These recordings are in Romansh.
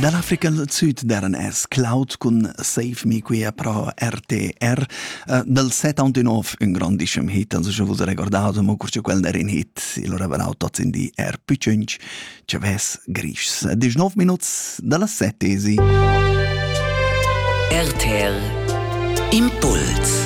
Dall'African Sud deren es Cloud cun Save Me quia pro RTR. Uh, dal 79 un grandischem hit, also schon vos recordato, ma curce quel der in hit, il aveva naut tots in di R più 5, Chavez Grischs. 19 minuts dalla settesi. RTR Impuls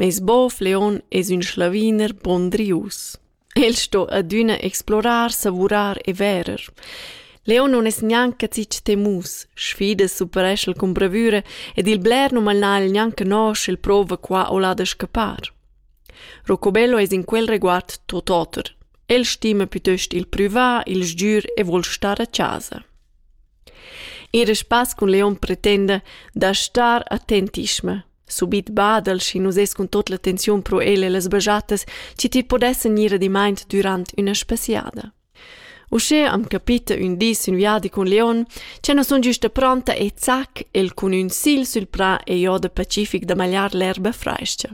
Meis bov Leon es ün sclaviner pondrius. El sto adüna explorar, savurar e verer. Leon nun es gnanca zich temus, sfidas superesch'el cun bravüra ed il bler nu mal n'ha el gnanca no sch'el prouva qua o là da scappar. Rocobello es in quel reguard tot oter. El stima piuttost il prüvà, il sgür e vuol star a chasa. In respass cun Leon pretenda da star attentischma, Subit badel, schi nus es cun tot l'attenziun pro el e las bajettas, chi ti podessan gnir adimaint dürant üna spasiada. Uschè am capita ün dis ün viadi cun Leon, cha nu sun güsta pronta e zac el cun ün sil sül prà e jo da Pacific da magliar l'erba frais-cha.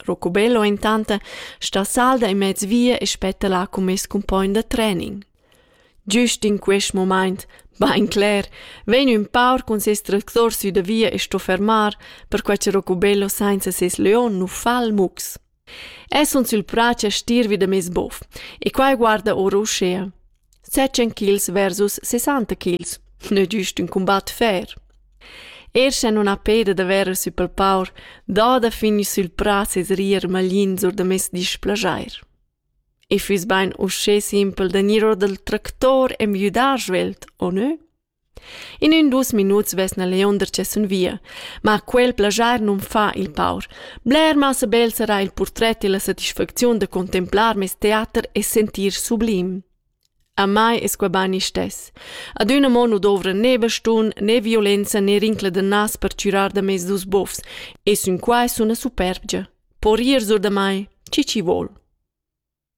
Rocubello intant sta salda in mez via e spetta là cun meis cumpogn da training. Giust in quest momaint, bain cler, vegn ün paur cun seis tractor sü da via e sto fermar, perquai cha Rocubello sainza seis leon nu fa il mux. El sun sül prà cha stir vi da meis bof e quai guarda our uschea. Setschen kils versus sessanta kils. Nö giust ün cumbat fer. Er sche non ha peda da verer sü pel paur, dà da finir sül prà ses rier maglins or da meis displajair. I füss bain uschè simpel da gnir our dal tractor e müdar svelt, o nö? In ün dus minuts vesna Leonder che sun via, ma quel plaschar nun fa il paur. Bler massa bel sarà il purtret e la satisfacziun da contemplar meis teater e sentir sublim. A mai es quai bain istess. Adüna mo nu dovra né bastun, né violenza né rincla da nas per chürar da mez dus bofs e sün quai suna superbgia. Po rir sur da mai, chi chi vuol.